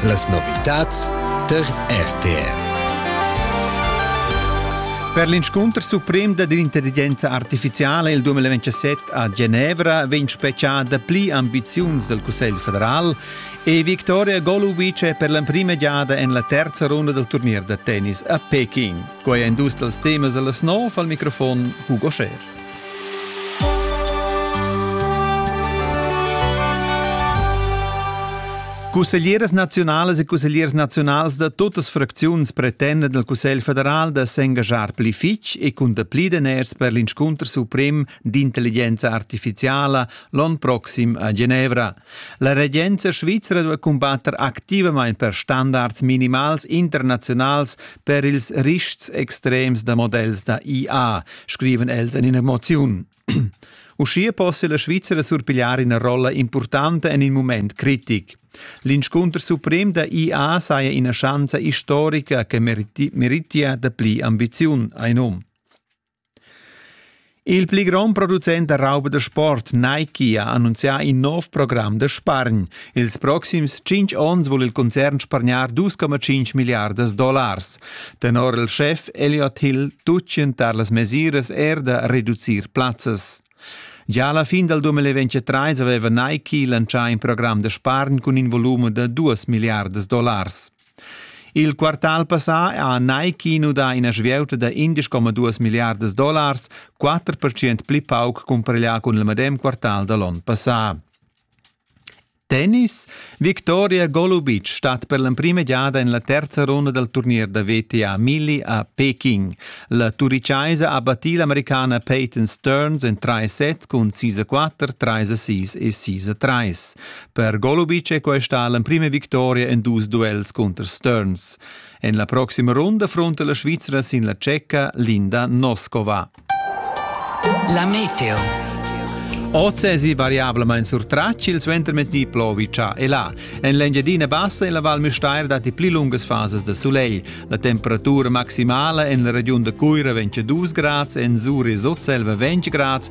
Las novitads tar RTR. Per l'inscunter suprem da l'intelligenza artificiala il 2027 a Genevra vegn speciada pli ambiziuns dal Cussegl federal e Victoria Golubic è per l'emprima giada en la terza runda dal turnier da tennis a Peking. Quai è in dus dals temas da las nov al microfon Hugo Scher. Cusseglieras naziunalas e cussegliers naziunals da tuttas fracziuns pretendan dal Cussegl federal da s'engaschar pli fitg e cun dapli daners per l'inscunter suprem d'intelligenza artificiala l'onn proxim a Genevra. La regenza svizra duai cumbatter activamain per standards minimals internaziunals per ils rischs extrems da modells da IA, scriven els en ina moziun. Uschia possia la Svizzera surpigliar ina rolla impurtanta en in mument critic. L'inscunter suprem da IA saja ina schanza istorica che meritia dapli ambiziun, ein um. Il pli grond producent da rauba da sport Nike ha annunzià in nov program da spargn. Ils proxims tschintg onns vul il concern spargnar 2,5 milliardas dollars. Tenor il schef Elliot Hill tutgien tar las mesiras er da reducir plazzas. Gia alla fin dal 2023 aveva Nike lancià in program da spargn cun in volume da 2 milliardas dollars. Il quartal passà ha Nike nudà ina svieuta da indesch coma duas milliardas dollars, quatter percent pli pauc cumpareglià cun il medem quartal da l'onn passà. Tennis Victoria Golubic stat per l'emprima giada en la terza runda dal turnier da VTA Milli a Peking. La turichaisa ha battì l'americana Peyton Stearns en trais sets cun 6-4, 3-6 e 6-3. Per Golubic è questa l'emprima victoria en dus duels cunter Stearns. En la proxima runda fronta la Svizra sin la tschecca Linda Noskova. La meteo. Oz è variablement sur trac il suentermezdi plovica e là. En l'Engiadina Bassa e la Val Müstair datti pli lungas fasas da sulegl. La temperatura maximala en la regiun da Cuira 22 grads, en Zuri Sotselva 20 grads,